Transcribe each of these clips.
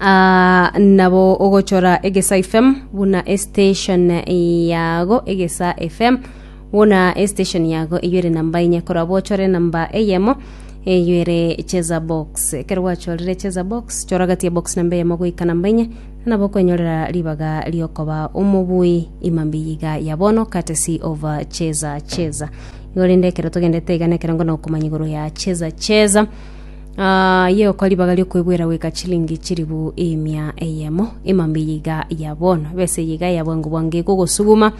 Ah, nabo ogochora egesa fm buna estation yago egesa fm buna estation yago eyo ere namba enye korwa bochore namba eyemo eyo ere cheza box ekero gwachorire cheza box chora gati ya box namba eyemo goika namba enye nabo okwenyorera ribaga riokoba omobui imambi yiga ya bono courtesy of uh, cheza cheza igo rende ekero togendete iga nekero ngono okomanya igoro ya cheza cheza Yegokwa ribaga ri'okwebwera goika chilingi chilifu emia eyemo. Emambia eye iga ya bono, ebesa eye iga ya bwango bwango ekogosuguma.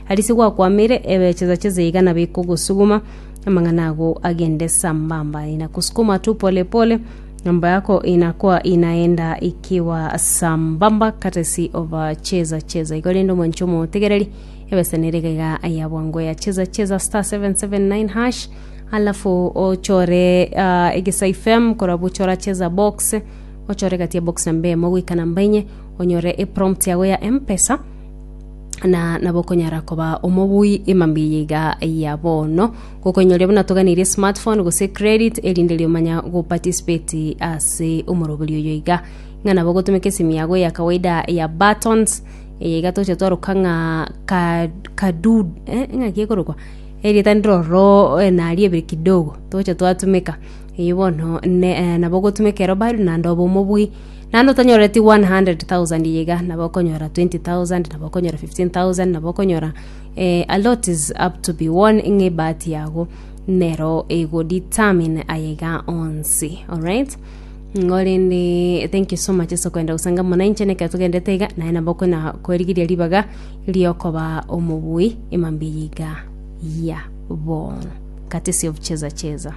Aria ase gwakwamire, ebe chesa chesa iga nabo ekogosuguma. Amang'ana ago agende sambamba, inakusukuma tu pole pole. Mambo yako inakwa inaenda ikiwa sambamba katesi oba chesa chesa. Igo rende omonche omotegereri, ebesa nere iga iga ya bwango ya chesa chesa star 779 hash. alafu ochore ah, egesaifem korabu chora cheza box ochore gati ya box namba emo goika namba enye onyore eprompt yago ya mpesa na nabo okonyara koba omobui emambi eye iga ya bono gokonyoria buna toganirie smartphone gose credit erinde riomanya goparticipate ase omoroberi oyo iga ng'a nabo gotumeka esimu yago ya kawaida ya buttons eye iga toche twaroka ng'a ka- kadu eh, ng'aki ekorokwa Erieta ndiroro naria ebere kidogo togocha twatumeka. Eyio bono ne eh, nabo ogotumeka ero bari naende obe omobui naende otanyoreti 100,000 iga iga nabo okonyora 20,000 nabo okonyora 15,000 nabo okonyora eh, a lot is up to be won ng'a ebahati yago nero ego determine aye iga onsi alright Korende thank you so much ase okoenda gosanga buna inche na ekero togendete iga naye nabo okona kwerigeria ribaga riokoba omobui emambia eye iga yabo courtesy of cheza cheza